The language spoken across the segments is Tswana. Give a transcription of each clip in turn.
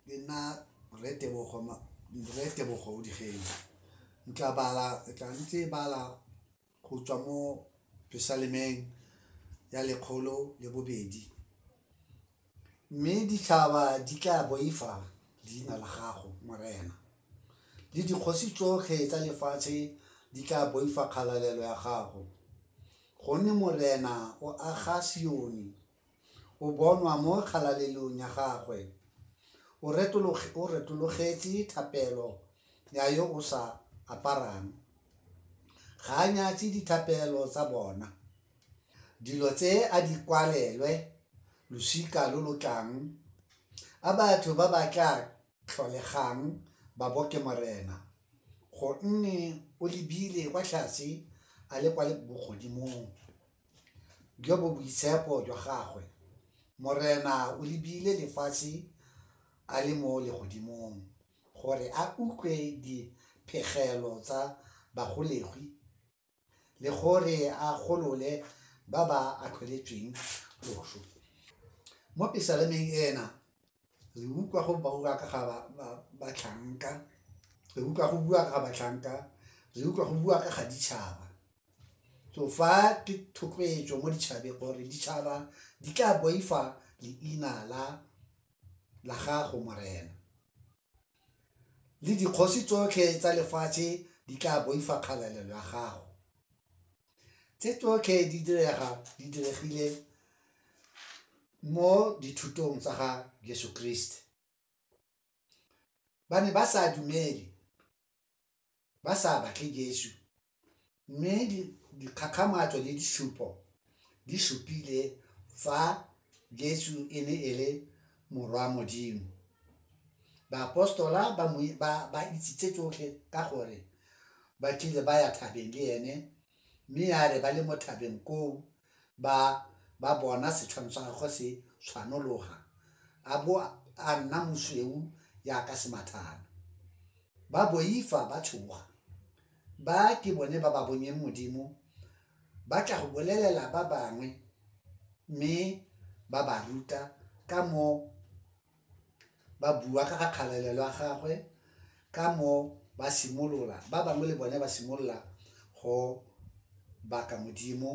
Ke nna Rre Tebogo Rre Tebogo o Digeng ntla bala tla ntse bala go tswa mo Jerusalemeng ya lekgolo le bobedi mme ditšhaba di tla boifa leina la gago morena le dikgosi tsotlhe tsa lefatshe di tla boifa kgalalelo ya gago gonne morena o aga Sione. O bonwa mo kgalalelong ya gagwe. O retologetse thapelo ya yo o sa aparang. Ga a nyatse dithapelo tsa bona. Dilo tse a di kwalelwe losika lo lo tlang, a batho ba ba tla tlholegang ba bo ke Morena, gonne o lebile kwa tlase a le kwa bogodimong. jo bo boitshepo jwa gagwe. Morena o lebile lefatshe a le mo legodimong gore a utlwe diphegelo tsa bagolegwi le gore a golole ba ba atlholetsweng loso. Mo pesalemeng ena re utlwa go bua ka ga batlhanka, re utlwa go bua ka ga batlhanka, re utlwa go bua ka ga ditšhaba. so fa ke thotloetso mo ditšhabeng gore ditšhaba di tla boifa leina la la gago morena le dikgosi tsotlhe tsa lefatshe di tla boifa kgalalelo ya gago tse tsotlhe di direga di diregile mo dithutong tsa ga jesu kriste ba ne ba sa dumele ba sa batle jesu Mme dikgakgamatso le disupo di supile fa Jesu e ne e le Morwa Modimo. Baapostola ba itsitse tsotlhe ka gore ba tlile ba ya thabeng le ene, mme ya re ba le mo thabeng koo ba ba bona setshwano sa gagwe se tshwanologa a bo a nna mosweu jaaka semathana. Ba boifa ba tshoga. Ba ke bone ba ba bonyeng Modimo ba tla go bolelela ba bangwe mme ba ba ruta ka mo ba bua ka ga kgalalelo ya gagwe ka mo ba simolola ba bangwe le bone ba simolola go baka Modimo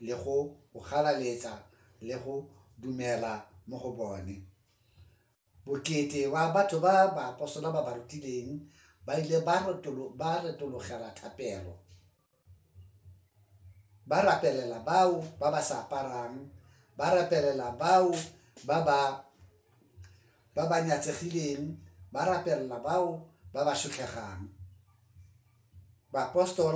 le go go galaletsa le go dumela mo go bone. Bokete wa batho ba baapostola ba ba rutileng ba ile ba retologela thapelo, ba rapelela bao ba ba sa aparang, ba rapelela bao ba ba nyatsegileng, ba rapelela bao ba ba shutlhegang. Baapostola ba ne ba tlhoka go ithuta go tlhompha Modimo le go ithuta go tlhompha batho.